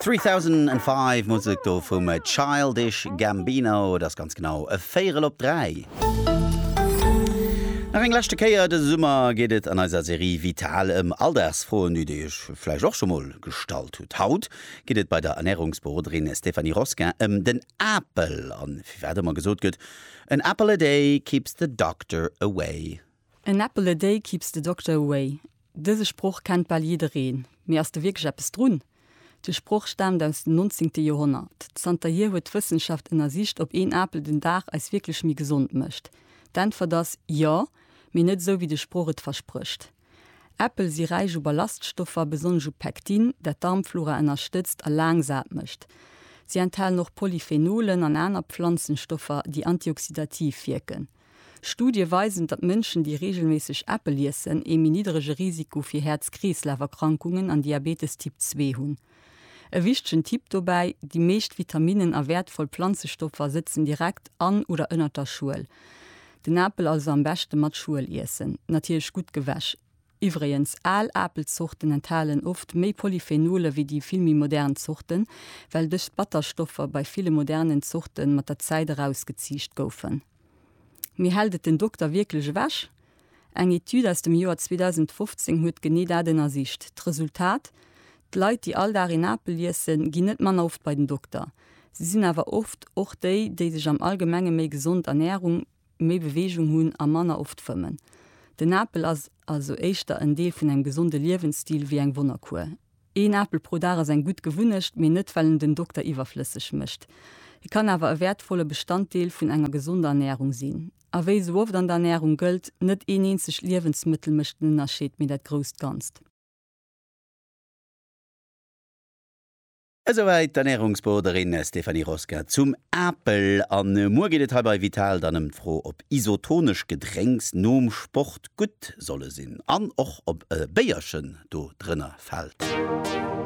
3005, Musek do vum Childish Gambino, et ass ganz genau e Véierel op 3. Nach eng leschte Kéier, dëse Summer geet et an eiser Serie Vital ëm Alldagsfroen, déi Dir Iech vläicht och scho mol gestallt hutt. Haut geet et bei der Ernärungsberoderin Stéphanie Rosquin ëm den Apel an firwat ëmmer gesot gëtt, An apple a day keeps the doctor away. An apple a day keeps the doctor away. Dëse Sproch kennt bal jiddereen, mee ass do wierklech eppes drun? De Sproch staamt aus dem nonzéngte Joerhonnert. Zanterhier huet d'Wëssenschaft ënnersicht, ob een Apel den Dag eis wierklech méi gesond mécht. D'Äntwert ass, Jo, mee net esou wéi de Sproch et versprécht. Äppel si räich u Ballaststoffer, besonnesch u Pektin, dat d'Darmflora ënnerstëtzt a laang sat mécht. Si enthalen och Polyphenolen an aner Pflanzenstoffer, déi antioxidativ wierken. Studie weisen, datt Mënschen, déi reegelméisseg Äppel iessen, ee méi niddrege Risiko fir Häerz-Kreeslaf-Erkrankungen an Diabetes Typ 2 hunn. E wichtegen Tipp dobäi, Déi meescht Vitaminnen a wäertvoll Planzestoffer sëtzen direkt an oder ënnert der Schuel. Den Apel also am beschte mat Schuel iessen, natierlech gutt gewäsch. Iwwregens, al Apelzorten enthalen oft méi Polyphenolen wéi déi vill méi modern Zorten, well dës Batterstoffer bei ville modernen Zorten mat der Zäit erausgeziicht goufen. Mee hält et den Dokter wierklech ewech? Eng Etüd aus dem Joer 2015 huet genee dat ënnersicht. D'Resultat, D'Leit, déi all Dag een Apel iessen, ginn net manner oft bei den Dokter. Si sinn awer oft och déi, déi sech am Allgemenge méi gesond ernähren. méi Beweegung hunn a manner oft fëmmen. Den Apel ass also éischter en Deel vun engem gesonde Liewensstil wéi eng Wonnerkuer. Een Apel pro Dag ass eng gutt Gewunnecht, mee net well en den Dokter iwwerflësseg mécht. E kann awer e wäertvolle Bestanddeel vun enger gesonder Ernärung sinn. A wéi esou oft an der Ernärung gëllt, net een eenzegt Liewensmëttel mécht den Ënnerscheed, mee dat grousst Ganzt. Esouwäit d'Ernärungsberoderin Stéphanie Rosquin zum Apel. A muer geet et hei bei Vital dann ëm d'Fro, ob isotonesch Gedrénks nom Sport gutt solle sinn an och ob e Béierchen do drënner fält.